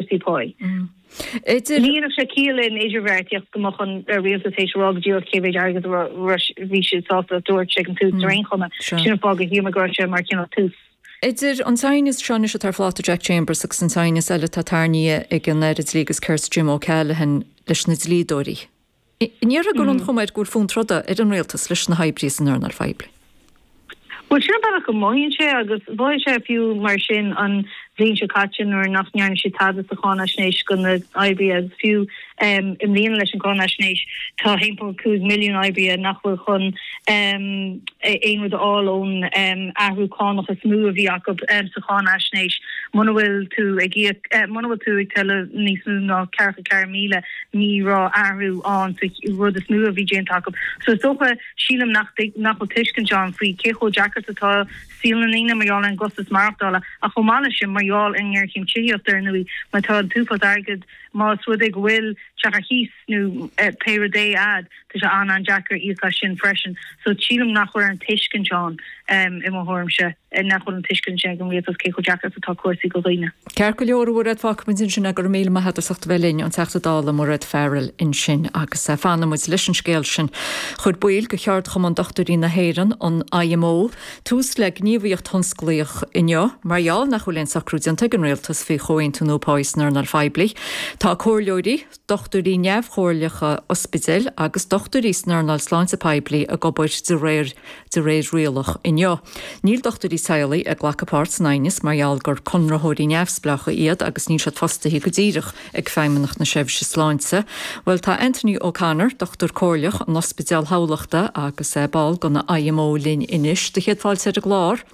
Christy Poyle. Ní raibh sé ciall in idirbheartaíocht go mbeadh an rialtas théis a rá go díreach cé mhéid airgid a bhí siad sásta a thabhairt ag an tús ar aon chuma. Sin an fáth gur shíl mé go raibh sé mar chineál tús. Idir an t-aighneas seo anois atá ar phláta Jack Chambers agus an t-aighneas eile atá tarrnaithe ag an Aire Dlí agus Cirt Jim O'Callaghan leis na dlíodóirí, an ndéarfá go bhfuil an chuma air go bhfuil fonn troda ar an rialtas leis na hoibrithe san earnáil phoiblí. Bhuel, sin an bealach go mothaíonn sé agus mhothaigh sé fiú mar sin an bhliain seo caite nuair nach ndearna siad tada sa cháinaisnéis do na hoibrithe agus fiú i mbliana leis an gcáinaisnéis tá 1.5 milliún oibrí nach bhfuil chun aon rud a fháil ón athrú cánach is mó a bhí acu sa cháinaisnéis. Muna bhfuil tú ag íoc, muna bhfuil tú ag tuilleamh níos mó ná ceathracha ceathair míle, Ní bheidh athrú ann sa rud is mó a bhí déanta acu. So is dócha, sílim, nach bhfuil tuiscint ann faoi cé chomh deacair is atá saol na ndaoine mar gheall ar an gcostas maireachtála ach chomh maith leis sin mar gheall ar an ngéarchéim tithíochta ar ndóigh mar tá an t-uafás airgid más rud é go bhfuil teach ar chíos nó pé rud é agat tá sé an-an-deacair íoc as sin freisin. So sílim nach bhfuil an tuiscint, tá, i mo thuairimse. ar nach bhfuil an tuiscint sin ag an rialtas cé chomh deacair is atá cúrsaí do dhaoine. Ceart go leor a Mhairéad fágfaidh muid ansin é, go raibh míle maith agat as ucht a bheith linn, an Teachta Dála Mairéad Farrell ansin agus fanfaidh muid leis an scéal sin. Chuir baill de Cheardchumann Dochtúirí na hÉireann, an IMO, tús le gníomhaíocht thionsclaíoch inniu mar gheall nach bhfuil aon socrú déanta ag an rialtas faoi chomhaontú nua pá san earnáil phoiblí. Tá comhairleoirí. dochtúirí neamhchomhairleacha ospidéil agus dochtúirí san earnáil sláinte poiblí ag obair de réir de réir rialach inniu. Níl dochtúirí teaghlaigh ag glacadh páirt san aighneas mar gheall gur conraitheoirí neamhspleácha iad agus níl siad fostaithe go díreach ag Feidhmeannacht na Seirbhíse Sláinte. Bhuel, tá Anthony O'Connor, dochtúir comhairleach in Ospidéal Thamhlachta agus ball den IMO linn anois. Sé do chéad fáilte ar an gclár.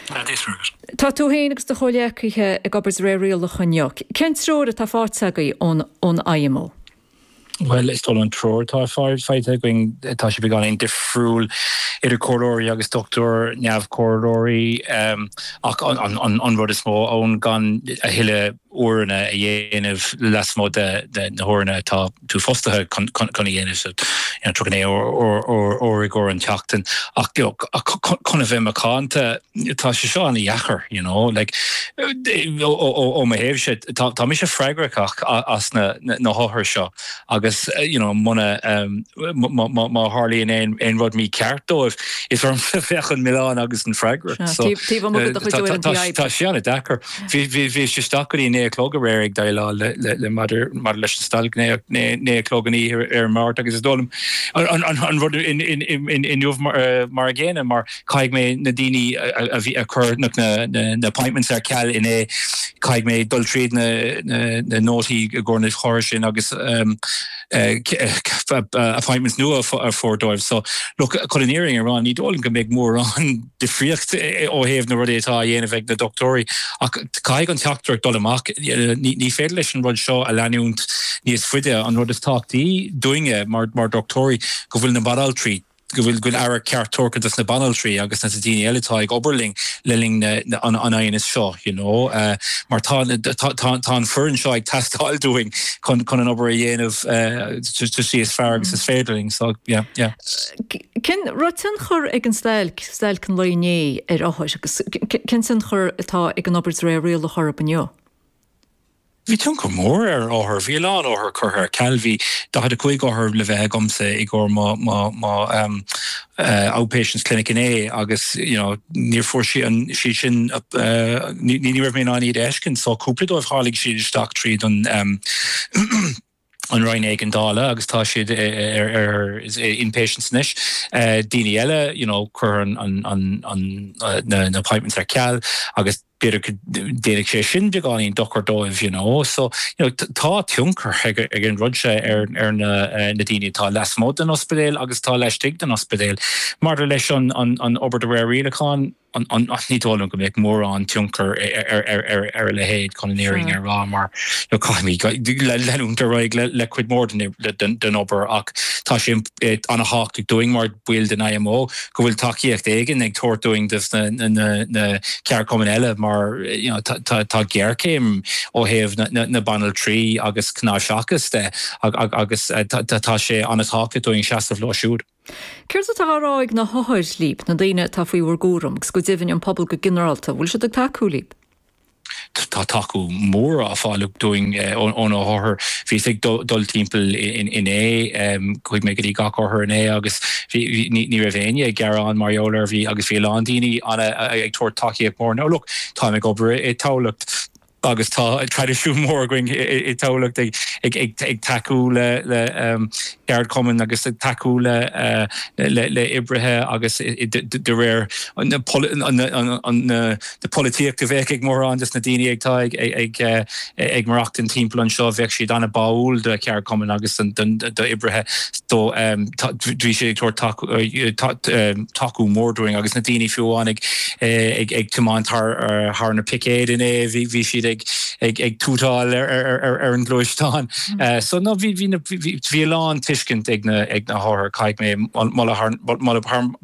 Tá tú féin agus do chomhghleacaithe ag obair de réir rialach inniu. Cén treoir atá faighte agaibh ón IMO? Bhuel, is dóigh liom an treoir atá faighte againn, tá sé beagáinín difriúil idir comhairleoirí agus dochtúir, neamh-chomhairleoirí ach an rud is mó ann, gan a thuilleadh, uaireanna a dhéanamh lasmuigh de na huaireanna atá tú fostaithe chun a dhéanamh, so tríocha naoi uair i gcomhair an tseachtain. Ach you know chun a bheith macánta, tá sé seo an-deacair you know like ó mo thaobhsa, tá mise freagrach as na hothair seo agus you know muna má tharlaíonn aon rud mícheart dóibh, is ormsa a bheadh an milleán agus an fhreagracht. So tá sé an-deacair. Bhíos isteach go dtí a naoi a chlog aréir ag déileáil le maidir leis an stailc, naoi a chlog an oíche Dé Máirt, agus is dóigh liom an rud inniu mar an gcéanna mar caithfidh mé na daoine a bhí curtha na appointments ar ceal inné, caithfidh mé dul tríd na nótaí i gcomhair na n-othar sin agus appointments nua a fháil dóibh. So, look, chun an fhírinne a rá, ní dóigh liom go mbeidh mórán. difríocht ó thaobh na rudaí atá á dhéanamh ag na dochtúirí ach caithfidh an teachtaireacht dul amach. Ní féidir leis an rud seo a leanúint níos faide. An rud is tábhachtaí dúinne mar dhochtúirí go bhfuil na banaltraí, go bhfuil aire ceart tabhartha dos na banaltraí agus dos na daoine eile atá ag obair linn le linn an aighneas seo you know mar tá tá an foireann seo ag teastáil dúinn chun chun an obair a dhéanamh uh, is fearr agus is féidir linn. So yeah, yeah. Cén tionchar a bhí ag an stailc, stailc an lae inné, ar othair agus cén tionchar atá ag an obair de réir rialach orthu inniu? Bhí tionchar mór ar othair. Bhí a lán othar curtha ar ceal. Bhí 45 othar le bheith agamsa i gcomhair mo outpatients clinic inné agus you know níor fuair siad sin, ní raibh mé in ann iad a fheiscint so cúpla dóibh tháinig siad isteach tríd an, an Roinn Éigeandála agus tá siad ar inpatients anois. Daoine eile, you know, cuireadh na appointments ar ceal agus b'fhéidir déanfaidh sé sin beagáinín dochar dóibh, you know. So, you know, tá tionchar ag an rud seo ar na daoine atá lasmuigh den ospidéal agus atá laistigh den ospidéal. Maidir leis an obair de réir rialacháin, Ní dóigh liom go mbeidh mórán tionchair ar a leithéid chun an fhírinne a rá mar caithfimid leanúint ar aghaidh le cuid mhór den obair ach tá sé an-thábhachtach dúinn mar baill den IMO go bhfuil tacaíocht éigin ag tabhairt dúinn dos na ceardchumainn eile mar tá géarchéim ó thaobh na banaltraí agus cnáimhseachas de agus tá sé an-tábhachtach dúinn seasamh leo siúd. Céard atá á rá ag na hothair líb, na daoine atá faoi bhur gcúram, agus go deimhin an pobal go ginearálta, an bhfuil siad ag tacú libh? Tá tacú mór á fháil dúinn ó na hothair. Bhíos ag dul timpeall inné, chuaigh mé go dtí gach othar inné agus ní raibh éinne ag gearán mar gheall air, agus bhí a lán daoine ag tabhairt tacaíocht mhór. Now look, táim ag obair i dTamhlacht. agus tá traidisiún mór againn i dTamhlacht ag tacú le ceardchumainn agus ag tacú le oibrithe agus de réir an polaitíocht a bheadh ag mórán dos na daoine atá ag maireachtaint timpeall anseo, bheadh siad an-báúil do cheardchumainn agus d'oibrithe. So bhí sé ag tabhairt tacú mór dúinn agus na daoine fiú amháin ag tiomáint thar na picéid inné, bhí siad ag tútáil ar an ngluaisteán. So nó bhí a lán tuiscint ag na hothair caithfidh mé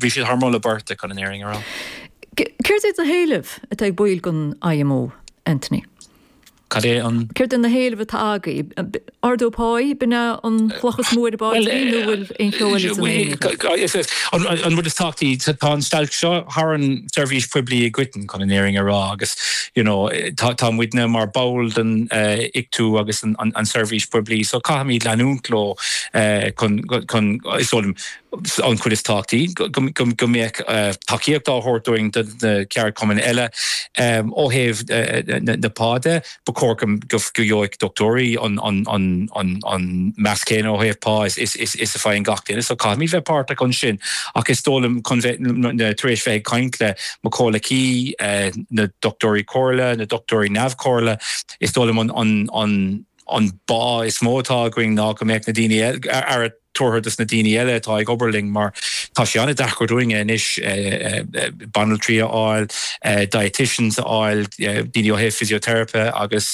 bhí siad thar moladh beirte chun an fhírinne a rá. Cad iad na héilimh atá ag baill den IMO, Anthony? Cad iad na héilimh atá agaibh? Ardú pá? B'in ea an chloch is mó ar an bpaidrín nó bhfuil aon cheo eile san aer agaibh? Bhuel, an rud is tábhachtaí, tá an stailc seo thar an tseirbhís phoiblí i gcoitinne, chun an fhírinne a rá, agus you know tá muidne mar bhall den Ictu agus an tseirbhís phoiblí, so caithfimid leanúint leo chun, is dóigh liom, an chuid is tábhachtaí, go mbeadh tacaíocht á thabhairt againn do na ceardchumainn eile. Ó thaobh na pá de, ba chóir go bhfaigheadh dochtúirí an meas céanna ó thaobh pá is a fhaigheann gach duine, so caithfimid bheith páirteach ansin. Ach is dóigh liom, tar éis bheith ag caint le mo chomhghleacaithe, na dochtúirí comhairle, na dochtúirí neamh-chomhairle, is dóigh liom an bá is mó atá againne ná go mbeadh na daoine eile, tabhairt dos na daoine eile atá ag obair linn mar tá sé an-deacair dúinne anois banaltraí a fháil, dieticians a fháil, daoine ó thaobh physiotherapy agus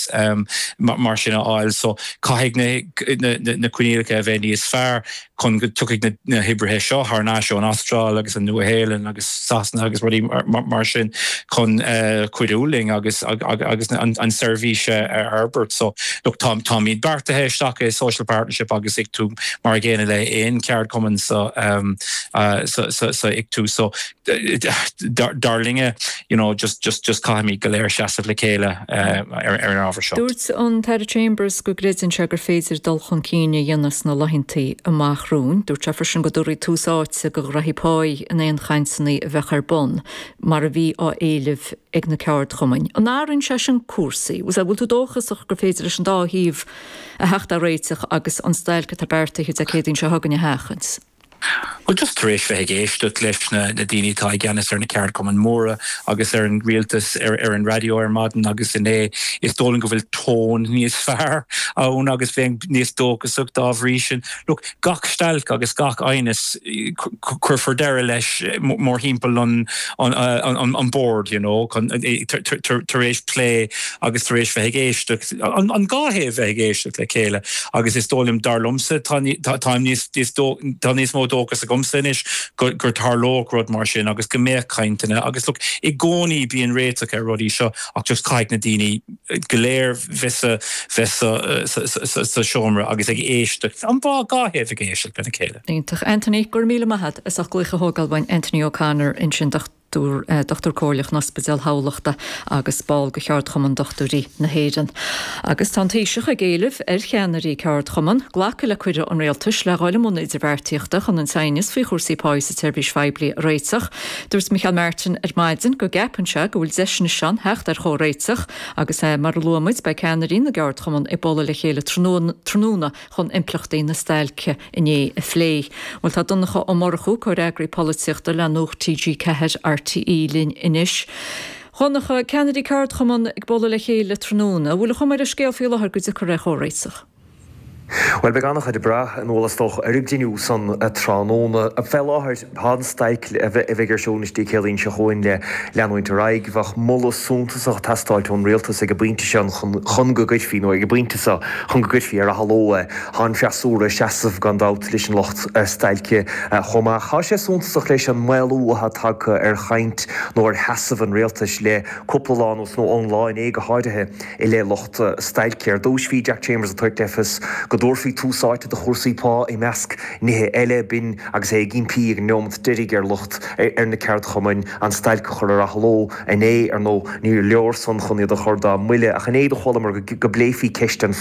mar sin a fháil so caithfidh na coinníollacha a bheith níos fearr chun go dtiocfaidh na hoibrithe seo thar n-ais ón Astráil agus an Nua-Shéalainn agus. Sasana agus rudaí mar sin chun cuidiú linn agus an tseirbhís a fhorbairt. So look, táimid beartaithe isteach i social partnership agus Ictu mar an gcéanna le haon cheardchumann sa Ictu. So dar linne, you know, just caithfimid go léir seasamh le chéile ar an ábhar seo. Dúirt an tAire Chambers go gcreideann sé gur féidir dul chun cinn a dhéanamh sna laethanta amach romhainn. Dúirt sé freisin go dtabharfaí tús áite do chúrsaí pá in aon chainteanna a bheadh ar bun, mar a bhí á éileamh ag na ceardchumainn. An athraíonn sé sin cúrsaí? An bhfuil tú dóchasach gur féidir leis an dá thaobh a theacht ar réiteach agus an stailc atá beartaithe Dé Céadaoin seo chugainn a sheachaint? Bhuel, just tar éis bheith ag éisteacht leis na daoine atá i gceannas ar na ceardchumainn mhóra agus ar an rialtas ar an raidió ar maidin agus inné, is dóigh liom go bhfuil tone níos fearr ann agus bheinn níos dóchasaí dá bhrí sin. Look. Gach stailc agus gach aighneas, cuirfear deireadh leis mórthimpeall an bhoird, you know, tar éis plé agus tar éis bheith ag éisteacht, an dhá thaobh bheith ag éisteacht le chéile agus is dóigh liom, dar liomsa, tá níos mó dóchas agamsa anois go dtarlódh rud mar sin agus go mbeadh cainteanna agus look, i gcónaí bíonn réiteach ar na rudaí seo ach just caithfidh na daoine, go léir bheith sa seomra agus ag éisteacht, an dá, dá thaobh ag éisteacht lena chéile. Iontach Anthony, go raibh míle maith agat as ucht glaoch a thógáil. B'in Anthony O'Connor ansin, Dochtúir Comhairleach in Ospidéal Thamhlachta agus ball de Cheardchumann Dochtúirí na hÉireann, agus tá an Taoiseach ag éileamh ar cheannairí ceardchumann glacadh le cuireadh an Rialtais le dhul i mbun idirbheartaíochta chun an t-aighneas faoi chúrsaí páighe sa tseirbhís phoiblí a réiteach. Dúirt Micheál Martin ar maidin go gceapann sé go bhfuil deis anois ann theacht ar chomhréiteach agus, mar a luadh muid, beidh ceannairí na gceardchumann ag bualadh le chéile tráthnóna chun impleachtaí na stailce inné a phlé. Bhuel, tá Donncha Ó Murchú, Comhfhreagraí Polaitíochta le Nuacht TG4, RTÉ linn anois. Dhonncha, ceannairí ceardchumann ag bualadh le chéile tráthnóna, an bhfuil a chuma ar an scéal faoi láthair go dtiocfar ar chomhréiteach? Bhuel, beidh an-chuid ag brath, anois, is dócha, ar an gcruinniú san tráthnóna. Fé láthair, tá an stailc a bheidh ar siúl Dé Céadaoin seo chugainn le leanúint ar aghaidh. Bheadh moladh suntasach ag teastáilt ón rialtas ag an bpointe sin chun go gcuirfí, nó ag an bpointe so, chun go gcuirfí ar athló é. Tá an freasúra ag seasamh, gan dabht, leis an lucht stailce chomh maith. Tá sé suntasach leis an maolú atá tagtha ar chaint, nó ar sheasamh, an rialtais le cúpla lá anuas, nó ón lá inné go háirithe. I leith lucht stailce ar dtúis, bhí Jack Chambers ag tabhairt le fios go dtabharfaí tús áite do chúrsaí pá i measc nithe eile. B'in agus é ag impí ag an neomat deiridh ar lucht, ar na ceardchumainn, an stailc a chur ar athló. Inné, ar ndóigh, níor leor san chun iad a chur dá mbuille, ach inné do chualamar go bpléifí ceist an